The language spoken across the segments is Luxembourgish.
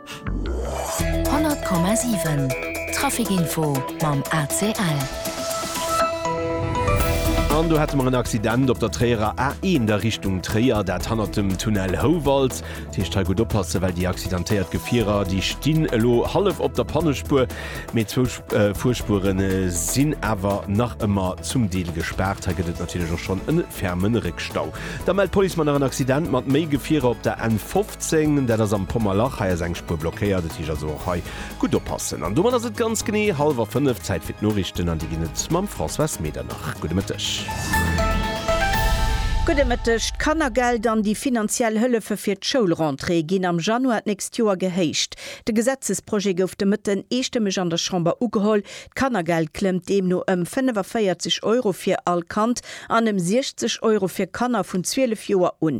100,7 Trafic Info mam ACL. An do hate mer en Accident op der Tréierer A1 a Richtung Tréier, dat hannert dem Tunnel Houwald. Dat heescht hei gutt oppassen, well déi accidentéiert Gefierer, déi stinn elo hallef op der Pannespuer, mee zwou Fuerspuere sinn awer nach ëmmer zum Deel gespaart. Hei gëtt et natierlech och schonn e ferme Réckstau. Da mellt d'Police mer nach en Accident mat méi Gefierer op der N15. 10, dat ass am Pommerlach. Hei ass eng Spuer blockéiert, et heescht also och hei gutt oppassen. An domat ass et ganz genee hallwer 5, Zäit fir d'Noriichten an déi ginn et mam Françoise Medernach. Gudde Mëtteg. Gudde Mëtteg. D'Kannergeld an déi finanziell Hëllefe fir d'Schoulrentrée ginn am Januar d'nächst Joer gehéicht. De Gesetzesprojet gouf de Mëtten eestëmmeg an der Chamber ugeholl. D'Kannergeld klëmmt deemno ëm 45 Euro fir all Kand an ëm 60 Euro fir Kanner vun 12 Joer un.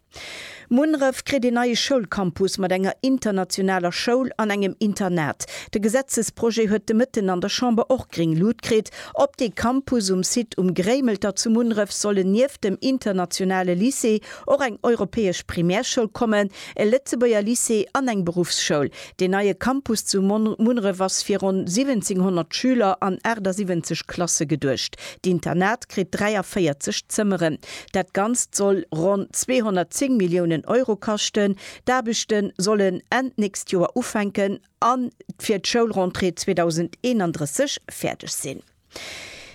Munneref kritt een neie Schoulcampus mat enger internationaler Schoul an engem Internat. De Gesetzesprojet huet de Mëtten an der Chamber och gréng Lut kritt. Op dee Campus um Site Um Gréimelter zu Munneref sollen nieft dem internationale Lycée och eng europäesch Primärschoul kommen, e Lëtzebuerger Lycée an eng Beruffsschoul. Deen neie Campus zu Munneref ass fir ronn 1700 Schüler an 78 Klasse geduecht. D'Internat kritt 43 Zëmmeren. Dat Ganzt soll ronn 210 Milliounen Euro kaschten. D'Aarbechte sollen Enn d'nächst Joer ufänken a fir d'Schoulrentrée 2031 fäerdeg sinn.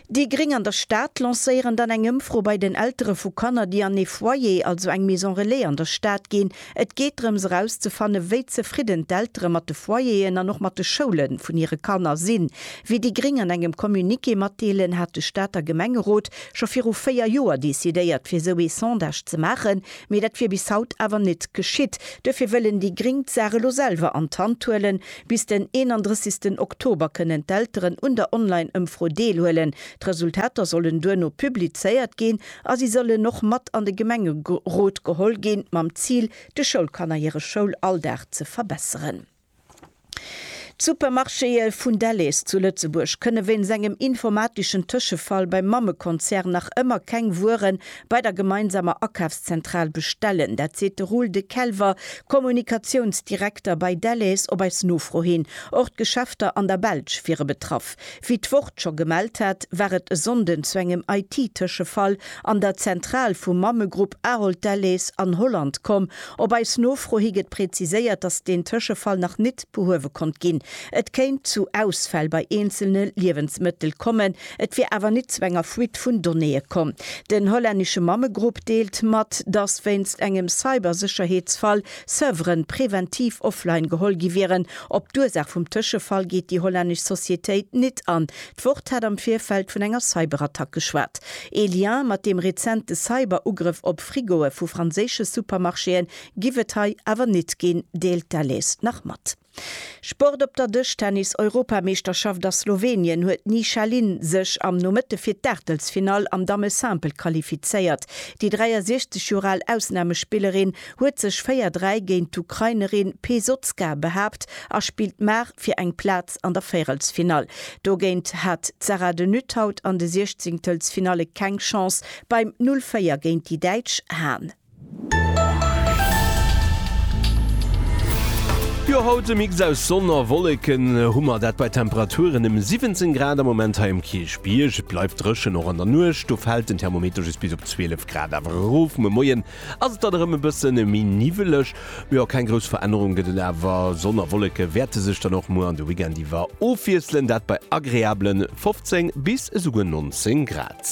Déi Gréng an der Stad lancéieren dann eng Ëmfro bei den Eltere vu Kanner, déi an ee Foyer, also eng Maison relais an der Stad ginn. Et geet drëms erauszefanne wéi zefridden d'Eltere mat de Foyeren an och mat de Schoule vun hire Kanner sinn. Wéi déi Gréng an engem Communiqué matdeelen, hat de Stater Gemengerot scho viru 4 Joer decidéiert fir esou ee Sondage ze maachen, mee dat wier bis haut awer net geschitt. Duerfir wëllen déi Gréng d'Saach elo selwer an d'Hand huelen. Bis den 31 Oktober kënnen d'Elteren un der Online-Ëmfro deelhuelen. D'Resultater sollen duerno publizéiert ginn. A si sollen och mat an de Gemengerot geholl ginn, mam Zil, de Schoulkanner hire Schoulalldag ze verbesseren. D'Supermarchéë vun Delhaize zu Lëtzebuerg kënne wéinst engem informatischen Tëschefall beim Mammekonzern nach ëmmer keng Wuere bei der gemeinsamer Akafszentral bestellen. Dat seet de Roel De Kelver, Kommunikatiounsdirekter bei Delhaize, op eis Nofro hin. Och d'Geschäfter an der Belsch wiere betraff. Wéi d'Wort scho gemellt hat, war et e Sonnden zu engem IT-Tëschefall an der Zentral vum Mammegrupp Ahold Delhaize an Holland komm. Op eis Nofro hi gëtt präziséiert, dass deen Tëschefall nach nit behuewe konnt ginn. Et kéint zu Ausfäll bei eenzelne Liewensmëttel kommen, et wier awer nit zu enger Fuite vun Donnéeë komm. Den hollännesche Mammegrupp deelt mat, dass wéinst engem Cybersécherheetsfall Serveren präventiv offline geholl gi wieren. Op d'Ursaach vum Tëschefall geet déi hollännesch Societéit nit an. D'Wort hat am Virfeld vun enger Cyberattack geschwat. Ee Lien mat deem rezente Cyberugrëff op Frigoe vu franséische Supermarchéen giff et hei awer nit ginn, deelt d'Alice nach mat. Sport Op der Dëschtennis-Europameeschterschaft a Slowenien huet d'Ni Shahlin sech am Nomëtte fir d'Aachtelsfinall am Damme Simple qualifizéiert. Déi 63 Joer al Ausnamespillerin huet sech 4, 3 géint d'Ukrainerin Pesotska behaapt a spillt mar fir eng Plaz an der Véierelsfinall. Dogéint hat d'Sarah de Nuthaudt an de Siechzingtelsfinalle keng Chance. Beim 0, 4 géint déi Däitsch Han. Jo haut e Mix aus Sonn a Wolleken hu mer, dat bei Temperaturen ëm 17 Grad am Moment hei um Kierchbierg. Et bleift dréchen, och an der Nuecht, do fält den Thermometer just bis op 12 Grad awer erof. Muer Moien ass et dann erëm e bësse méi niwweleg, ma jo keng grouss Verännerung gëtt et awer. Sonn a Wolleke wäerte sech dann och muer an de Weekend iwwer ofwiesselen, dat bei agreabele 15 bis esouguer 19 Grad.